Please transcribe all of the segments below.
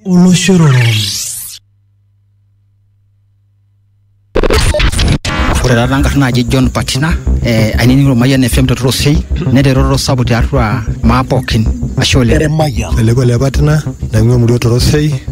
Oloshororoni. Ore taata nkarn naaji John Patina eh, ainining'ito Mayian FM te Torosei neteroro sapuk tiatua maa pookin ashe oleng. Eleko le Patina naing'ua emurua Torosei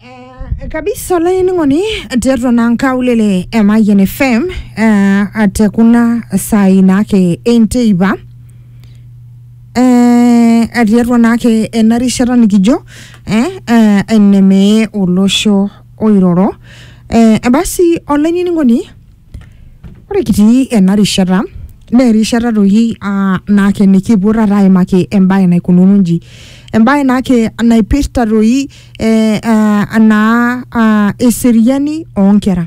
Eh, kabisa olainining'oni tiatua naa nkaulele e Mayian FM eh, te kuna saai naake enteipa eh, tiatua naake ena rishata nikijo eh, eh, enemee olosho oiroro eh, basi olainining'oni Ore kitii ena rishata naa erishata toki aa naa nikipuo taata aimaki embae naikununo inji. Embae naake naipirta toki ee aa naa aa eseriani oo nkera.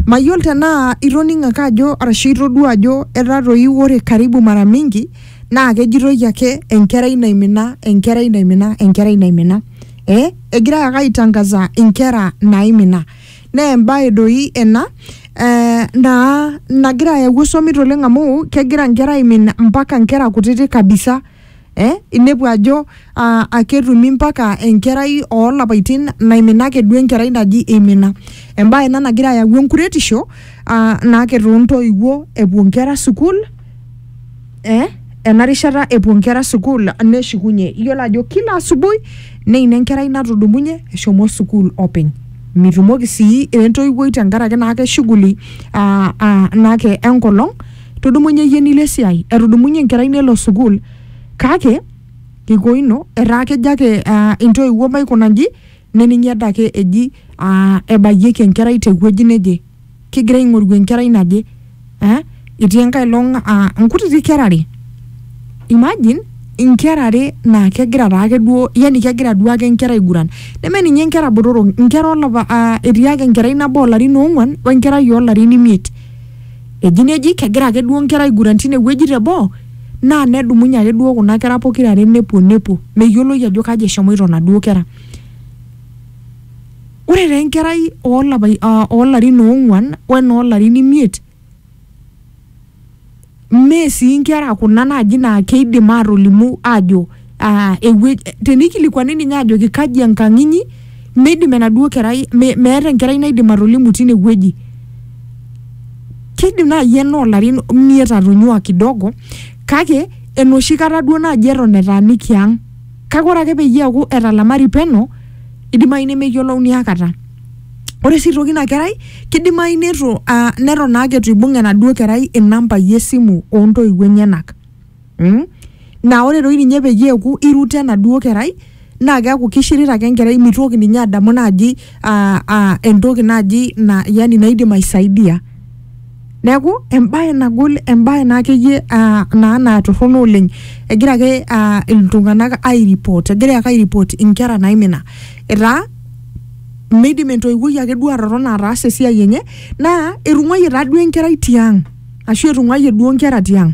Mayiolo tenaa itoning'o ake ajo arashu itodua ajo etaa toi ore karibu mara mingi naake ejitoi ake enkerai naimina, enkerai naimina, enkerai naimina ee egirai ake aitang'aza inkera naimina. naa embae doi ena eh, naa nagira ayau osomit oleng amu kegira nkera aimin mpaka nkera kutiti kabisa eh, inepu ajo ah, aketumi mpaka enkerai oolapaitin naimina ake duo enkerai naji imina embae ena nagira ayau enkuretisho ah, naake toontoiwuo epuo nkera sukuul eh, ena rishata epuo nkera sukuul neshukunye iyiolo ajo kila asubuhi neina enkerai natudumunye eshomo sukuul openy mitumoki sii entoiwuoi tenkaraki naake shughuli ah, ah, naake enkolong tudumunye iyie nilo esiai etudumunye enkerai nelo sukuul kake kiko ino etaa kejo ake ah, intoiwuo maikuna inji neningi adake eji aa ebayieki enkerai te wueji neje, kigira aing'oru enkerai naje eh, etii enkae long aa nkutiti kera are imagine inkera are naa kegira taake duo yani kegira duo ake inkera aiguran neme ninye inkera botorok inkera olapa aa etii ake enkerai nabo olarin oong'uan wenkerai oolarin imiet. eji neji kegira ake duo nkera aiguran tine wueji te boo naa nedumunye ake duo kuna kera pokira are nepuo nepuo meyioloi ajo kaji eshomoito inaduo kera. Ore taa enkerai oolapai aa oo larin oong'uan o enoo larin imiet mee sii nkera kuna naaji naa kiidim aatolimu aajo ah, ewueji tenikilikuani ninye ajoki kaji enkang inyi meidim enaduo kerai me, meeta enkerai naidim atolimu tine wueji kidim naaji ena olarin imiet atonyua kidogo kake enoshi kata duo naaji eton etaaniki ang kake ore ake peyie eaku etalamari peno idimayu nemeyiolouni akata ore sii aitoki ina kerai kidimayu netu uh, neton naake etu ibung enaduo kerai inambai esimu ontoiwuo enyenak mm? naa ore doi ninye peyie eeku iruto enaduo kerai naa keeku kishirita ake enkerai mitoki ninye adamu naaji ah, ah, entoki naaji na, yani naidim aisaidia neeku embae nagol embae naa akeyie ah, naa naa torrono oleng egira ake ah, iltung'anak airipot egira ake airipot inkera naimina etaa midim entoiwuoi ake duo atotona ataasa esiai enye naa etung'uayie taa duo enkerai tiang ashu etung'uayie duo inkera tiang